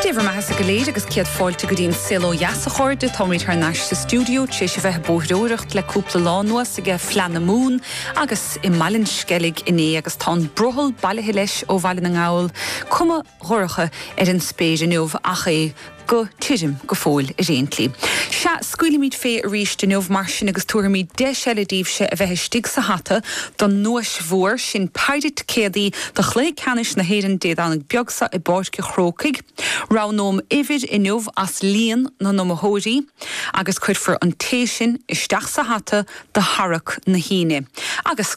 Dé bhur mbeathasa go léir agus céad fáilte go dtí An Saol Ó Dheas, a chairde. Táimid thar n-ais sa stiúideo tar éis a bheith ag bóithreoireacht le cúpla lá anuas ag Fleadh na Mumhan agus i mBaile an Sceilg inné agus tá an brothall bailithe leis ó Bhaile na nGall, cuma dhorcha ar an spéir inniu ach é go tirim go fóill ar aon tslí. Sea, scaoilimid fé arís inniu, mar sin, agus tabharfaimid deis eile daoibhse a bheith istigh sa hata don nduais mhór, sin péire ticéadaí do chluiche ceannais na hÉireann Dé Domhnaigh beag seo i bPáirc a' Chrócaigh. Roghnóim uimhir inniu as líon na n-iomaitheoirí agus cuirfear an té sin isteach sa hata do tharrac na hAoine. Agus.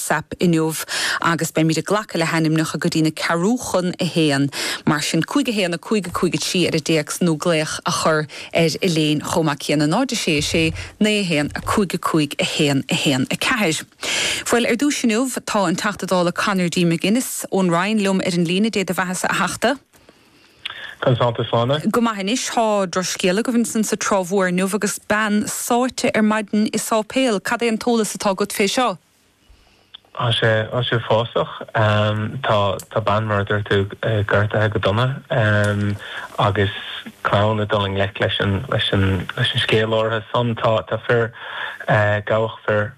sap inniu agus beimid ag glacadh le hainmneacha go dtí a ceathrú chun a haon. Mar sin, cúig a haon, a cúig, a cúig a trí ar an dtéacs nó glaoch a chur orainn chomh maith céanna, náid a sé a sé, naoi a haon, a cúig a cúig, a haon a haon a ceathair. Bhuel, ar dtúis inniu, tá an Teachta Dála Conor D. McGuinness ón Rinn liom ar an líne, Dé do bheathasa a Theachta. Conas atánn tú, a Shláine. Go maith anois, tá drochscéal agaibh ansan sa Trá Mhór inniu agus bean sáite ar maidin i sáipéal. Cad é an t-eolas atá agat fé seo? Tá sé, tá sé uafásach. Tá, tá bean mar a dúirt tú gortaithe go dona agus clann ag dul i ngleic leis an, leis an, leis an scéal áirithe san. Tá, tá fir, gabhadh fear,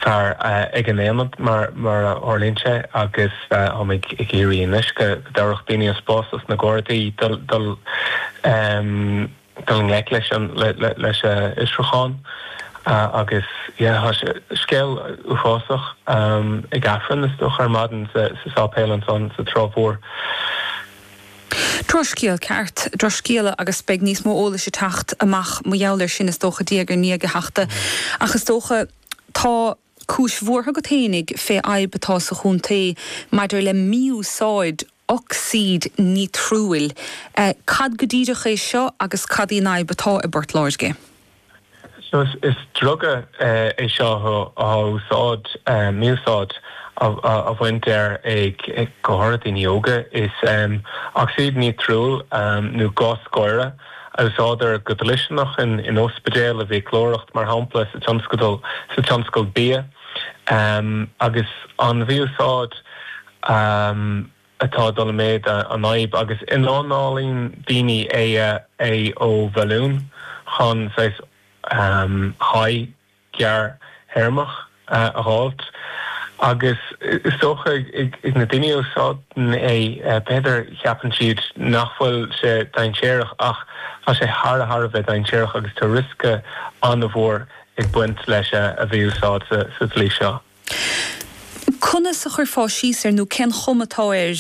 fear ag an ionad mar, mar a tharlaíonn sé agus táimid ag iarraidh anois go dtabharfadh daoine an spás dos na Gardaí dul, dul. dul i ngleic leis an fhiosrúchán agus yeah tá sé uafásach ag Aifreann is dócha ar maidin sa sáipéal ansan sa Trá Mhór. Drochscéal ceart, drochscéal agus beidh níos mó eolais ag teacht amach mar gheall ar sin is dócha diaidh ar ndiaidh a Theachta ach is dócha tá Cúis bhuartha agat féinig fé fhadhb atá sa chontae maidir le mí-úsáid ocsaíd nítriúil. Cad go díreach é seo agus cad í an fhadhb atá i bPort Láirge? So is druga é seo atá á úsáid, mí-úsáid á bhaint as ag go háirid daoine óga. Is ocsaíd nítriúil nó gás gáire a úsáidtear go dlisteanach in ospidéil, i bhfiaclóireacht, mar shampla, sa tionscadal, sa tionscal bia, agus an mí-úsáid atá ag dul i méid an fhadhb, agus ionanálaíonn daoine é ó bhalún chun saghas high. gearrthéarmach a fháilt. Agus is dócha ag na daoine a úsáideann é, b'fhéidir, ceapann siad nach bhfuil sé dainséarach ach tá sé thar a thar a bheith dainséarach agus tá riosca an-mhór ag baint leis a mhí-úsáid sa tslí seo. Conas a chuirfeá síos air nó cén chuma atá air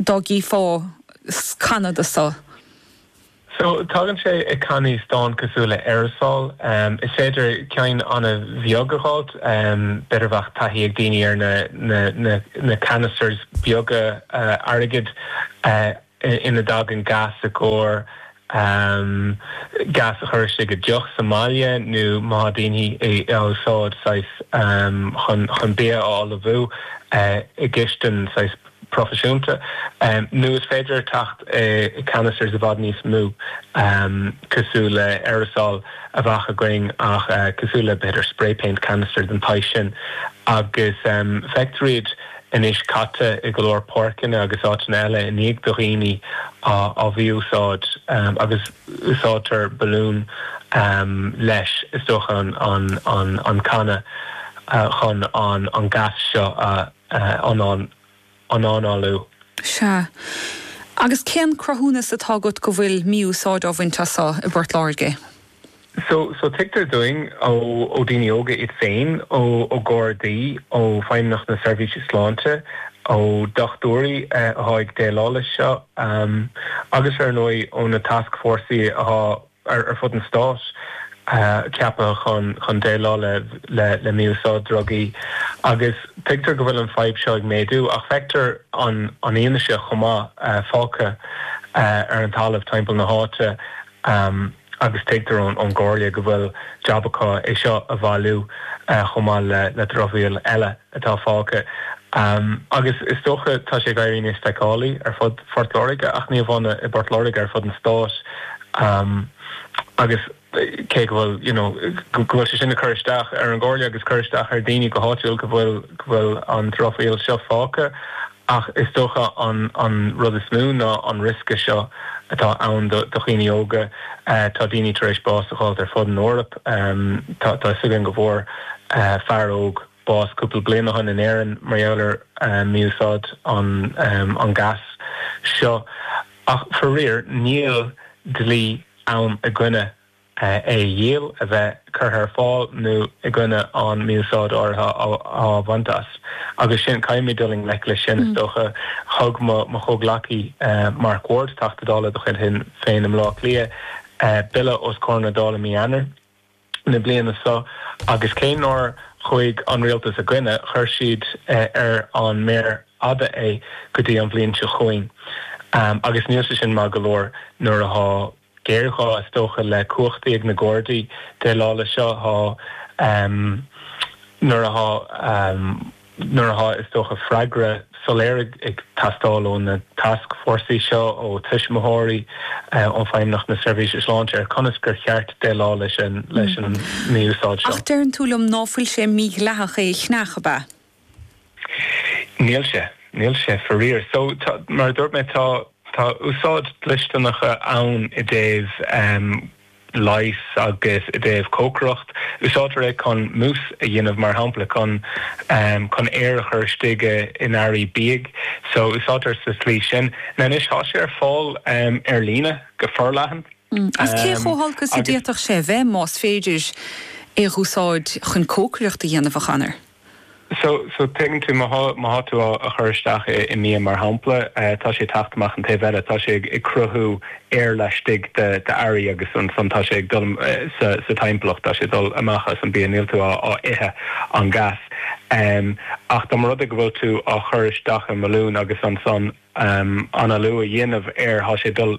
dá gcífeá canna de seo? So tagann sé i cannaí stáin cosúil le aerosol. Is féidir ceann an-bheag a dh'fháilt, b'fhéidir a bheadh taithí ag daoine ar na na canisters beaga airgid ina dtagann gas i gcomhair gas a chur istigh i deoch sa mbaile nó má thá daoine á úsáid saghas chun chun bia a ullmhú i gcistin, saghas. proifisiúnta, nó is féidir é teacht i canisters i bhfad níos mó, cosúil le aerosol a bheadh againn, ach cosúil le, b'fhéidir, spray paint canister den tsaghas sin. Agus feictear iad anois caite i go leor páirceanna agus áiteanna eile i ndiaidh do dhaoine á mhí-úsáid, agus úsáidtear balún leis, is dócha, an canna chun an gas seo a a análú. Sea. Agus cén cruthúnas atá agat go bhfuil mí-úsáid á bhaint as seo i bPort Láirge? Sea, tuigtear dúinn ó daoine óga iad féin, ó na Gardaí, ó Feidhmeannacht na Seirbhíse Sláinte, ó dhochtúirí atá ag déileáil leis seo agus, ar ndóigh, ó na tascfhórsaí atá ar fud an stáit, ceapaithe chun déileáil le mí-úsáid drugaí agus tuigtear go bhfuil an fadhb seo ag méadú ach feictear an fhianaise chomh maith fágtha ar an talamh timpeall na háite agus tuigtear ón gComhairle go bhfuil jab acu é seo a bhailiú chomh maith le dramhaíl eile. atá fágtha. Agus is dócha, tá sé ag éirí níos feiceálaí ar fud Phort Láirge, ach ní amháin i bPort Láirge, ar fud an stáit. Agus cé go bhfuil, you know, go bhfuil sé sin ag cur isteach ar an gComhairle agus cur isteach ar daoine go háitiúil go bhfuil, go bhfuil an dramhaíl seo fágtha, ach is dócha an, an rud is mó ná an riosca seo atá ann do, do dhaoine óga. Tá daoine tar éis bás a dh'fháilt ar fud an Eoraip. Tá, tá 'fhios againn go bhfuair fear óg. bás cúpla bliain ó shin in Éirinn mar gheall ar mí-úsáid an ghais seo ach faraor níl dlí ann i gcoinne é a dhíol, a bheith curtha ar fáil nó i gcoinne an mí-úsáid áirithe á bhaint as agus sin, caithfimid dul i ngleic leis sin is dócha. Thug mo chomhghleacaí Mark Ward, Teachta Dála de chuid Shinn Féin i mBleá Cliath, Bille os comhair na Dála mí Eanáir. na bliana seo agus cé nár chuaigh an Rialtas ina choinne, chuir siad ar an méar fhada é go dtí an bhliain seo chugainn. Agus níl sé sin maith go leor nuair atá géarghá is dócha le cumhachtaí ag na Gardaí chun déileáil leis seo, nuair atá. Nuair atá, is dócha, freagra soiléir ag teastáil ó na tascfhórsaí seo, ó tuismitheoirí, ó Fheidhmeannacht na Seirbhíse Sláinte ar conas gur cheart déileáil leis an mí-úsáid seo. Ach deireann tú liom ná fuil sé mídhleathach é a cheannach, ab ea? Níl sé. Níl sé, faraor. So, tá, mar a dúirt mé, tá, tá úsáidí dlisteanacha ann i dtaobh. leighis agus i dtaobh cócaireacht. Úsáidtear é chun mús a dhéanamh, mar shampla, chun chun aer a chur istigh in earraí bídh. So, úsáidtear sa tslí sin. Now, anois, tá sé ar fáil ar líne go forleathan. Agus cé chomh holc is a d'fhéadfadh sé a bheith, más féidir é a dh'úsáid chun cócaireacht a dhéanamh, a Chomhairleoir? So, so an dtuigeann tú, má tá, má tá tú á, á chur isteach i, i mbia mar shampla, tá sé ag teacht amach an taobh eile, tá sé ag, ag cruthú aer laistigh de, d'earraí agus ansan tá sé ag dul sa, sa timpeallacht, tá sé ag dul amach as an bia, níl tú á, á ithe an gas. Ach dá mba rud é go bhfuil tú á chur isteach i mbalún agus ansan analú a dhéanamh air, tá sé ag dul,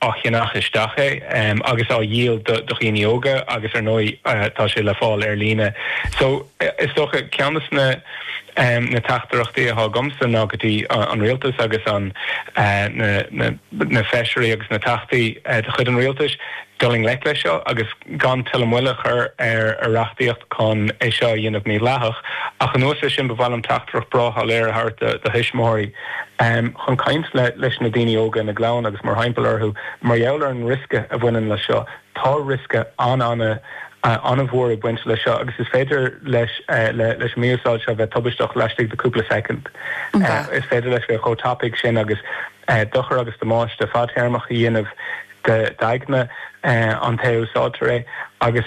á cheannach istigh é agus á dhíol do dhaoine óga agus ar ndóigh tá sé le fáil ar líne. So, is dócha, ceann de na na teachtaireachtaí atá agamsa ná go dtí an Rialtas agus an na Feisirí agus na Teachtaí de chuid an Rialtais dul i ngleic leis seo agus gan tuilleadh moille a chur ar reachtaíocht chun é seo a dhéanamh mídhleathach. Ach anuas ar sin ba mhaith liom teachtaireacht bhreá shoiléir a thabhairt do thuismitheoirí. chun caint leis na daoine óga ina gclann agus mórthimpeall orthu mar gheall ar an riosca a bhaineann leis seo, tá riosca an-an-an-an-mhór ag baint leis seo agus is féidir leis leis an mí-úsáid seo bheith tubaisteach laistigh de chúpla soicind. Is féidir leis bheith chomh tapaidh sin agus dochar agus damáiste fadtéarmach a dhéanamh d'aigne an té a úsáidtear é agus